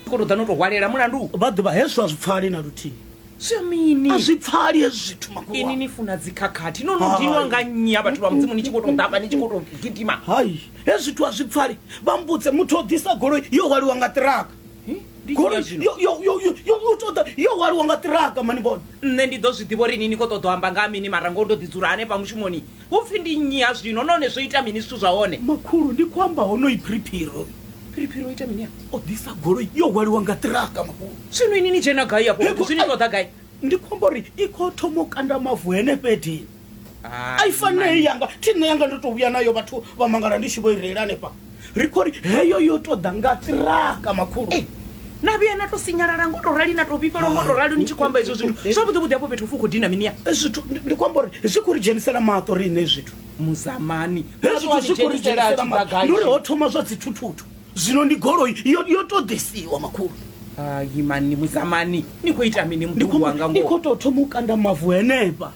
kono ḓa no to hwalela mulandu vha ḓivha hezwo a zwi pfali na luthihi zwa mini a zwi pfali hezwi zwithu makhulu ini ni funa dzikhakhathi no no dinwa nga nnyi ha vhathu vha mudzimu ni tshi khou tou ḓafha ni tshi khou tou gidima hai hezwi zwithu a zwi pfali vha mbudze muthu o ḓisa goloi yo hwaliwa nga ṱiraka goloi yo yo- yo- yo- yo- yo ṱoḓa yo hwaliwa nga ṱiraka mani bona nṋe ndi ḓo zwi ḓivha uri ini ni khou ṱoḓa u amba nga ha mini mara ngoho ndo ḓi dzula hanefha mushumoni Hu pfi ndi nnyi ha zwino, nahone zwo ita mini zwithu zwa hone? Makhulu, ndi khou amba honoyi Phiriphiro. Phiriphiro o ita mini afho? O ḓisa goloi yo hwaliwa nga ṱiraka, makhulu. Zwino inwi ni dzhena gai afho fhethu? Zwi ni ṱoḓa gai? Ndi khou amba uri i khou thoma u kanda mavu henefha edini. A i fanei yanga, thi nṋe yanga. Ndo tou vhuya nayo, vhathu vha mangala ndi tshi vho i reila hanefha. ri khou ri heyo yo tou ḓa nga tiraka makhulu Ei, na vhuya na to sinyalala ngo to rali na to vhifhelwa ngo to rali ni tshi khou amba hezwo zwithu zwavhuḓi vhuḓi hafho fhethu fu khou dina mini ya Eh, zwithu ndi- ndi khou amba uri zwi khou ri dzhenisela maṱo riṋe zwithu muzamani Hezwi zwithu zwi khou ri dzhenisela maṱo. Ndi uri ho thoma zwa dzithuthutu zwino ndi goloi yo yo tou ḓisiwa makhulu imani muzamani ni khou ita mini Ndi mukulu khou- wanga ndi ngoho khou tou thoma u kanda mavu henefha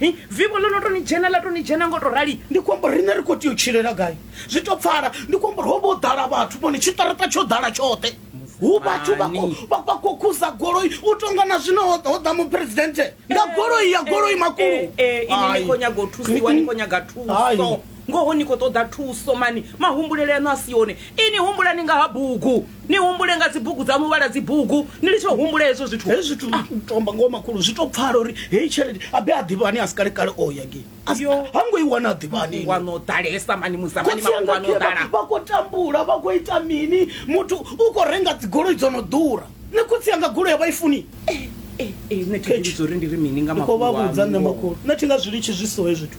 Hi, vivho ḽo no tou ni dzhena, ḽa tou ni dzhena nga u tou rali. Ndi khou amba uri riṋe ri khou tea u tshilela gai? Zwi tou pfala. Ndi khou amba uri ho vha ho ḓala vhathu, vhone, tshiṱaraṱa tsho ḓala tshoṱhe. Hu vhathu vha khou, vha, vha khou khuza goloi, u tou nga na zwino ho, ho ḓa Muphuresidennde nga goloi ya goloi makulo. Ee, ee, inwi ni khou nyaga u thusiwa, ni khou nyaga thuso. Ngoho ni khou ṱoḓa thuso, mani. Mahumbulele aṋu a si one. Inwi humbulani nga ha bugu. ni humbule nga dzibugu dza muvhala dzibugu ni litsho humbule hezwo zwithu hezwi zwithu ah. tomba ngoho makhulu zwi to pfala uri heyi tshelede abe a ḓivhani a si kale kale o ya ngei ha ngo i wana a ḓivhani wano ḓalesa mani musamani mafhungo ano ḓala vha khou tambula vha khou ita mini muthu u khou renga dzigoloi dzo no ḓura ni khotsi yanga goloi ya vha i funi eh, eh, eh, nṋe thi nga zwi litshi zwi so hezwi zwithu